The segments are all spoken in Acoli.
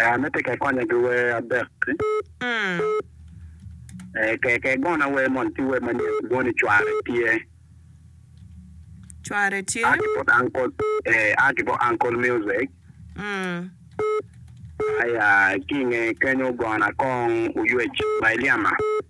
Ame tika ikonyo gi wer adek ki? Ee, ke gona wer moni ki wer manyen moni cware tye. Cware tye. A ki bot Uncle, ee, a ki bot Uncle Music. Aya, ki inge kenyo gona kong Oywec ma ilyema.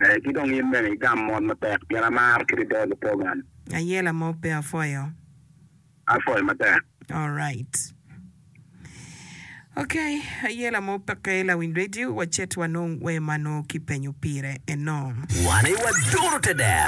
Ee, ki dong in bene igam mot matek, pien amar kit ide lupogan. Aye lamok pe apwoyo. Apwoyo matek. Alright. Ok, aye lamok peke lawiny radio, wacit wanong wer ma nongo kipenyo pire eno. Wan aye wadoro te dero.